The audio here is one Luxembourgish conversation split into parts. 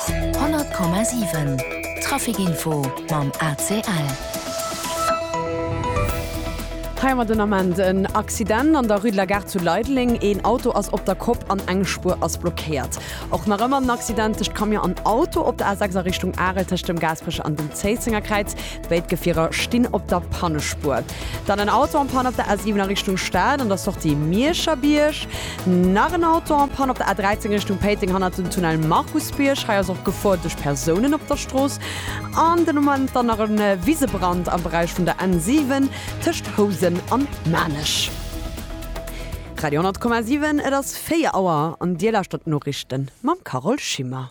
100,7 Trafic-Info mam ACL. Hei mat den Ament en Accident an der Rue de la Gare zu Leideleng. Een Auto ass op der Kopp an eng Spuer ass blockéiert. Och nach ëmmer en Accident tëscht Camion an Auto op der A6 a Richtung Arel tëscht dem Gaasperecher an dem Zéissenger Kräiz. Béid Gefierer stinn op der Pannespuer. Dann en Auto en Panne op der A7 a Richtung Stad an der Sortie Miescherbierg. Nach en Auto en Panne op der A13 Richtung Péiteng hannert dem Tunnel Markusbierg. Hei ass och Gefor duerch Persounen op der Strooss. An den Ament dann nach e Wisebrand am Beräich vun der N7 tëscht Housen an Maarnech. Radio 10,7 Et ass 4 Auer an Dir lauschtert d'Noriichten mam Carole Schimmer.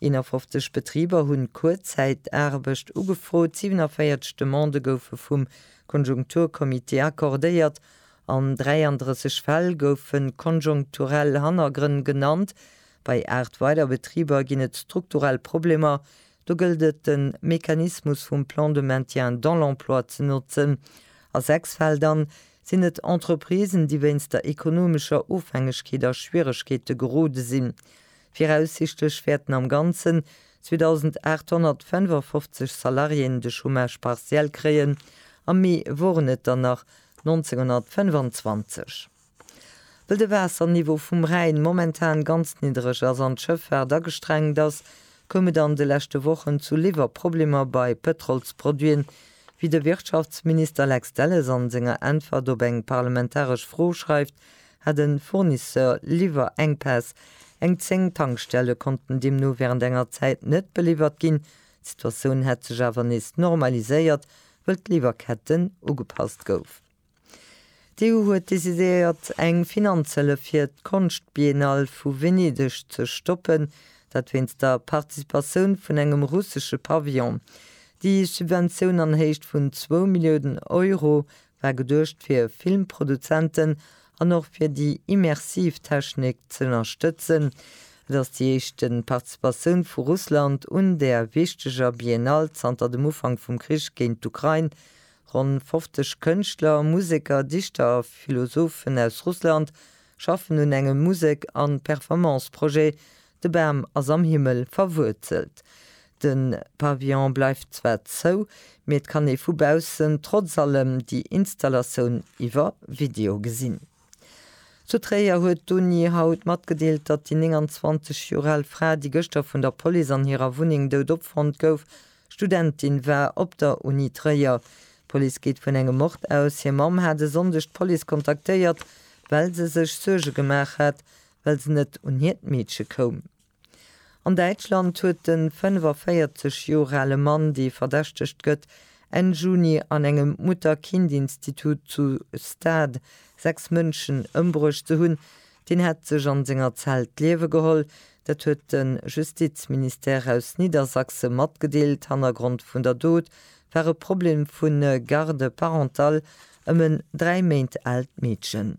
51 Betriber hunn Kuerzäitaarbecht ugefrot, 47 Demandë goufe vum Konjunkturcomité accordéiert, an 33 Fäll goufe konjonkturell Hannergrënn genannt. Bei 8 weider Betriber ginn et strukturell Problemer, do gëllt et de Mechanismus vum Plan de maintien dans l'emploi ze notzen. A 6 Fäll dann, sinn et Entreprisen, déi wéinst der ekonomescher Ofhängegkeet a Schwieregkeete gerode sinn. Viraussichtlech wäerten am Ganzen 2.855 Salariéen de Chômage partiel kréien, am Mee woren et der nach 1.925. Wëll de Waasserniveau vum Rhäin momentan ganz niddereg ass an d'Schëffaart agestrengt ass, koum et an de leschte Wochen zu Liwwerproblemer bei Pëtrolsproduiten, wéi de Wirtschaftsminister Lex Delles a senger Äntwert op eng parlamentaresch Fro schreift, hat e Fournisseur Liwwerenkpäss, eng 10 Tankstelle konnten deemno wärend enger Zäit net beliwwert ginn. D'Situatioun hätt sech awer nees normaliséiert, wëll d'Liwwerketten ugepasst gouf. D'EU huet decidéiert eng Finanzhëllef fir d'Konschtbiennale vu Venedeg ze stoppen, dat wéinst der Participatioun vun engem russesche Pavillon. Déi Subventioun an Héicht vun zwou Milliounen Euro War geduecht fir Filmproduzenten an och fir déi immersiv Technik z'ënnerstëtzen. Et ass déi éischt Participatioun vu Russland un där wichteger Biennale zanter dem Ufank vum Krich géint d'Ukrain. Ronn 50 Kënschtler, Museker, Dichter a Philosophen aus Russland schaffen un engem Musek an Performance-Projet, De Bam ass am Himmel verwuerzelt. De Pavillon bleift zwar zou, mee et kann ee vu baussen trotz allem déi Installatioun iwwer Video gesinn. Zu Tréier huet d'Uni haut matgedeelt, datt déi 29 Joer al Fra, déi gëschter vun der Police an hirer Wunneng dout opfonnt gouf, Studentin war op der Uni Tréier. D'Police geet vun engem Mord aus. Hir Mamm hat e Sonndeg d'Police kontaktéiert, well se sech Suerge gemaach hat, well se net un hiert Meedche koum. An Däitschland huet de 45 Joer ale Mann, dee verdächtegt gëtt, Enn Juni an engem Mutter-Kind-Institut zu Stade sechs Mënschen ëmbruecht ze hunn. Deen hätt sech an senger Zell d'Liewe geholl. Dat huet de Justizministère aus Niedersachse matgedeelt. Hannergrond vun der Dot war e Problem vu Garde parentale ëm en dräi Méint aalt Meedchen.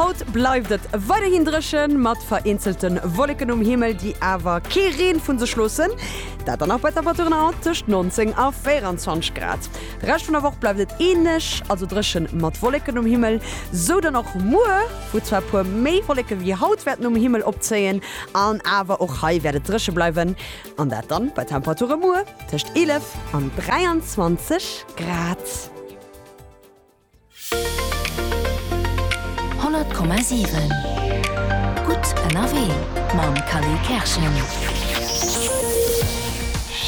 Haut bleift et weiderhin dréchen, mat vereenzelte Wolleken um Himmel, déi awer kee Reen vun sech loossen. Dat dann och bei Temperaturen haut tëscht 19 a 24 Grad. De Rescht vun der Woch bleift et änlech, also dréchen mat Wolleken um Himmel. Sou dann och muer, wou zwar e puer méi Wolleke wéi haut wäerten um Himmel opzéien, an awer och hei wäert et dréche bleiwen. An dat dann bei Temperature muer tëscht 11 an 23 Grad. 100,7 Gutt ënnerwee mam Khalil Kerschen.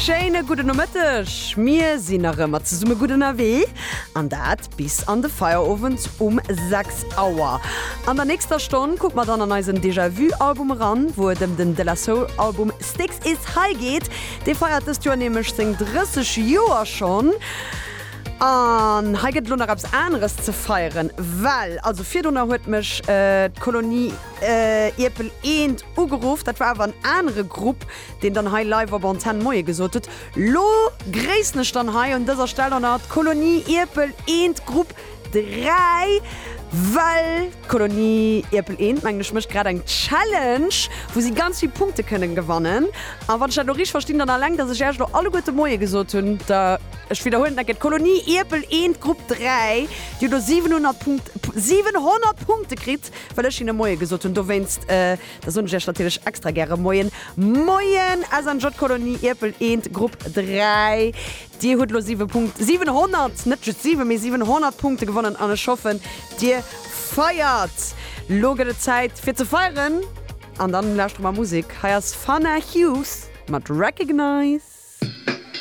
Schéine gudde Nomëtteg. Mir sinn nach ëmmer zesumme gutt ënnerwee an dat Bis an de Feierowend um 6 Auer. An der nächster Stonn kucke mer dann an eisen Déjà Vu Album eran, wou et ëm den De La Soul Album Sticks Is High geet. Dee feiert dëst Joer nämlech seng 30 Joer schonn. An hei gëtt et elo nach eppes aneres ze feieren, well also virdrunner huet mech d'Kolonie Ierpel Eent ugeruff. Dat war awer en anere Grupp, deen dann hei live op Antenn Moie gesot huet. Lo gréissen ech dann hei un dëser Stell och nach d'Kolonie Ierpel Eent Grupp 3, well d'Kolonie Ierpel Eent, mengen ech, mécht grad eng Challenge, wou si ganz vill Punkte kënnen gewannen. A wann ech dat elo richteg verstinn, dann alleng datt ech Iech elo alleguerte Moie gesot hunn, da, ech widderhuelen et nach eng Kéier, d'Kolonie Ierpel Eent Grupp 3, déi huet elo 700 Punkte kritt, well ech hinne Moie gesot hunn, dowéinst. Da soen ech iech natierlech extra gäre Moien. Moien! SNJ Kolonie Ierpel Eent, Grupp 3. Dir hutt elo 7 Punkt, 700, net just 7, mee 700 Punkte gewonnen an ech hoffen, dir feiert. Lo gëtt et Zäit fir ze feieren an dann lauschtere mer Musek. Hei ass Fana Hughes mat Recognize.